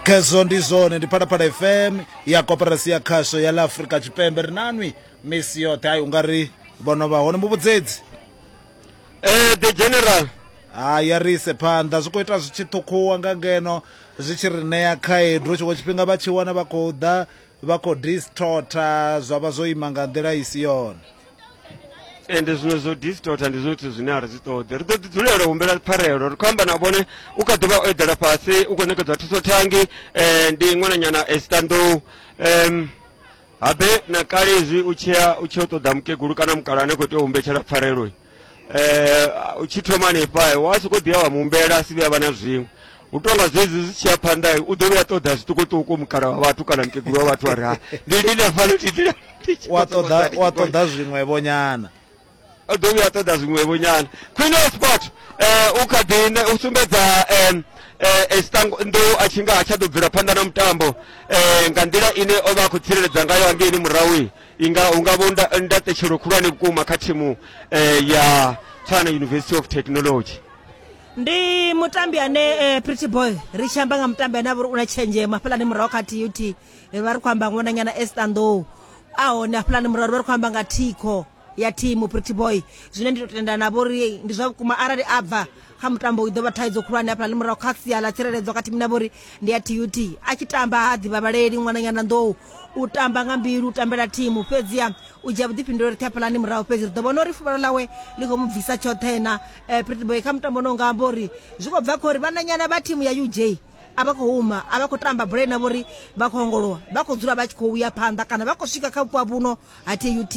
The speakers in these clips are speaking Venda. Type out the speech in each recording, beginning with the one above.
khezwo ndi zwone ndi phalaphala fm ya koperasi ya khasho ya la afrika tshipembe ri nanwi misi yoṱhe hayi ungari vhono vha hone muvhudzedzi eh the general ha ya ri ise phanḓa zwi khou ita zwi tshi ṱhukhuwa nga ngeno zwi tshi ri ṋea khaedu tshiṅwe tshifhinga vha tshi wana vha khou ḓa vha khou distorta zwa vha zwo ima nga nḓila i si yone ende zwiṅwe zwo distorta ndi zwithu zwine a ri zwi ṱoḓi ri ḓo ḓi dzulela u humbela pfarelo ri khou amba na vhone u kha ḓi vha o eḓela fhasi u khou ṋekedzwa thuso thangi um ndi ṅwananyana esitanḓou um habe na kale izwi u tshia u tshi yo ṱoḓa mukegulu kana mukala ane khou tea u humbetshela pfareloi eh, u tshi thoma hanefha wa sokou ḓiya wa muhumbela a si vhuya vha na zwiṅwe u tonga zwezwi zwi tshi ya phanḓa u ḓo vhuya ṱoḓa zwiṱukuṱuku mukala wa vhathu kana mukegulu wa vhathu a ri ha ndi lini afhano tiḓila wa ṱoḓa wa ṱoḓa zwiṅwevho nyana o ḓo vhuya ṱoḓa zwiṅwevho nyana queen of sport um u kha ḓi ne- u sumbedza um ndo a tshi nga ha tsha ḓo bvela phanḓa na mutambo um nga nḓila ine o vha a khou tsireledza ngayo hangeini murahui inga hu nga vho nda- ndaṱetshelo khulwane vhukuma kha thimu eh, ya tshwana university of technology ndi mutambi ane eh, pretty boy ri tshi amba nga mutambi ane a vha uri u na tshenzhemo hafhalani murahu kha tut eh, vha ri khou amba ṅwananyana estandow a hone hafhalani murahu vha ri khou amba nga thikho ya thimu pretty boy zwine ndi to tendana navho uri ndi zwa vhukuma arali a bva kha mutambo i ḓo vha thaidzo khulwane hafhala ḽi murahu kha sia ḽa tsireledzo kha thimu na vhori ndi ya tut a tshi tamba ha ḓivhavhaleli ṅwananyana nḓou u tamba nga mbilu u tambela thimu fhedziha u dzhia vhuḓifhinduleli ṱhe hafhalani murahu fhedzi ri ḓo vhona uri fuvhalo ḽawe ḽi khou mu bvisa tshoṱhe na eh, prettyboy kha mutambo no nga amba uri zwi khou bva kha uri vhananyana vha thimu ya uj a vha khou huma a vha khou tamba bola ina vhori vha khou ongolowa vha khou dzula vha tshi khou uya phanḓa kana vha khou swika kha vhupo ha vhuno ha tut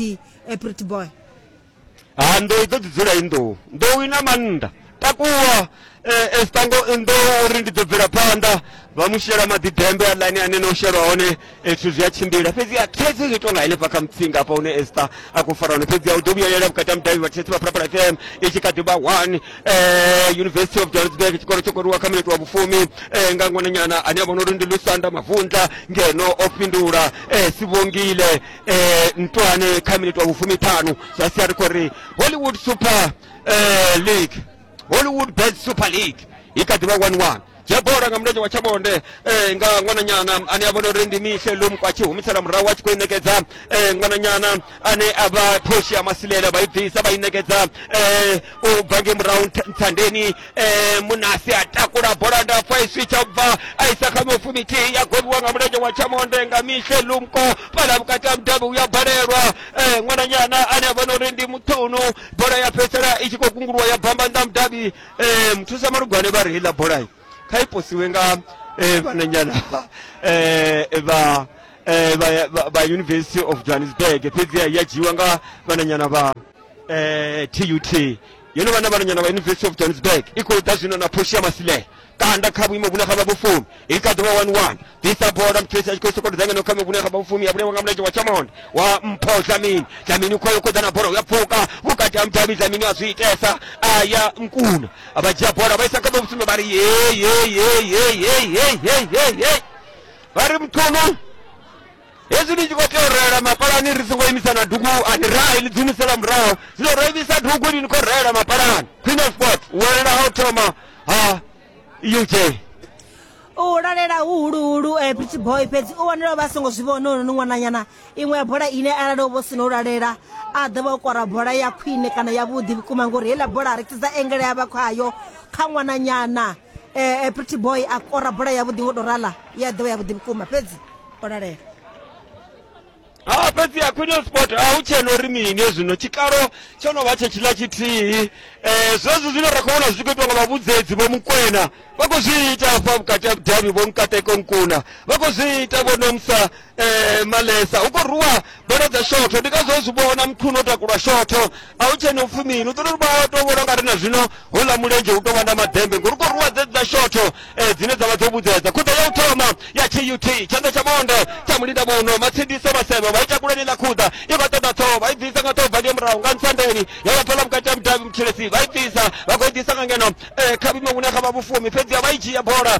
eh, prettyboy ha nḓou i ḓo ḓi dzula i nḓou nḓou i na mannḓa takuwa eh, esitango nḓou uri ndi ḓo bvela phanḓa vha mu shela maḓi dembe aḽani ane na u shelwa hone eh, zwithu zwi a tshimbila fhedzi a thaidzo zwi tonga henefha kha mutsinga hafha hune esta a khou fara hone fhedzi a u ḓo vhuyelela vhukati ha mudavhi vha tshesi vha phalaphala fm i tshi kha ḓi vha one eh, university of johannesburg tshikolo tsho koriwa kha minete wa vhufumi eh, nga ngwananyana ane a vhona uri ndi lusanda mavundla ngeno o fhindula eh, sivhongile eh, ntoane kha miniti wa vhufumiṱhanu zwa sia ri khou ri hollywood super eh, league hollywood bed super league i kha ḓivha 11 dzhia bola nga mulenzhe wa tshavhonde eh, nga ṅwananyana ane a vhona uri ndi mihle lomko a tshi humisela murahu a tshi khou i ṋekedza eh, ṅwananyana ane a vha phoshi ya masilela vha i bvisa vha i ṋekedza eh, u bva nge murahu ntha- nthandeni eh, munasi a takula bola ndapfa i switsha bva a isa kha mifumithihi ya gobiwa nga mulenzhe wa tshamonde nga mishe lumko fhala vhukati ha mudabi uya balelwa eh, ṅwananyana ane a vhona uri ndi muṱhunu bola ya fhedzisela i tshi khou kunguluwa ya bamba nnḓa mudabi eh, muthusa malugwane vha ri heiḽa bola kha i posiwe nga eh, vhananyana eh, vha eh, vha- vha- vha university of johannesburg fhedziha ya dzhiiwa nga vhananyana vha eh, tut yo no vha na vhananyana vha university of johannesburg i khou ḓa zwino na phoshi ya masilela kanda kha vhuimo vhune ha vha vhufumi i kha ḓuvha 11 ḓisa bola muthu esi a tshi khou sokou dzangano kha vhune ha vha vhufumi ya vhulengwa nga mulenzhe wa tshamonde wa mpho dlamini dlamini u khoyo khoḓa na bola uya pfuka vhukati ha mudavhi dlamini a zwi itesa a ya nkuna a vha dzhia bola vha isa kha vha vhufumi vha ri yeyeyeyeyeyeyeyeyey vha ri muthuno hezwi ni tshi khou tea u reela mapalani ri songo imisa na dugu ani rahi ni dzumisela murahu zwino ro imisa dugu ni ni khou reela mapalani queen of sports welela ha u thoma ha uj u lalela huhuluhulu eh, pretty boy fhedzi u wanela vha songo zwi vhona uri ni ṅwananyana iṅwe ya bola ine arali u vho sina u lalela a ḓo vha o kora bola ya khwine kana yavhuḓi vhukuma ngori heiḽa bola ri tsidza engele ya vha khayo kha ṅwananyana um pretty boy a kora bola yavhuḓi ngo tou rala ya ḓo vha yavhuḓi vhukuma fhedzi o lalela ha fhedzi ya queen of sport a hu tshena uri mini zwino tshikalo tsho no vha tshe tshiḽa tshithihi um zwezwi zwine ra khou vhona zwi tshi khou itwa nga vhavhudzedzi vho mukwena vha khou zwi ita hafha vhukati ha vhudavhi vho nkateko nkuna vha khou zwi ita vho nomsa um malesa hu khou rwiwa ndo ledza shotho ndi kazwo zwi vhona mkhuno takulwa shotho a hu tshene upfhi mini u ṱoḓa uri vha to vhona ngari na zwino houḽa mulenzhe u tou vha na madembe ngori u khou rwa dzedza shotho eh, dzine dza vha dzo vhudzedza khuḓa ya u thoma ya tut tshanḓa tsha monde tsha mulinda muno matsindise vhasevhe vha ita kuleni ḽa khuḓa i vha ṱoḓa ṱhoho vha i bvisa nga ṱhoho bva ndiyo murahu nga ntsandeni ya vha pfala vhukati ha mudavhi mutshilesi vha i bvisa vha khou i ḓisa nga ngeno eh, kha vhime vhune kha vha vhufuwi fhedziha vha i dzhia bola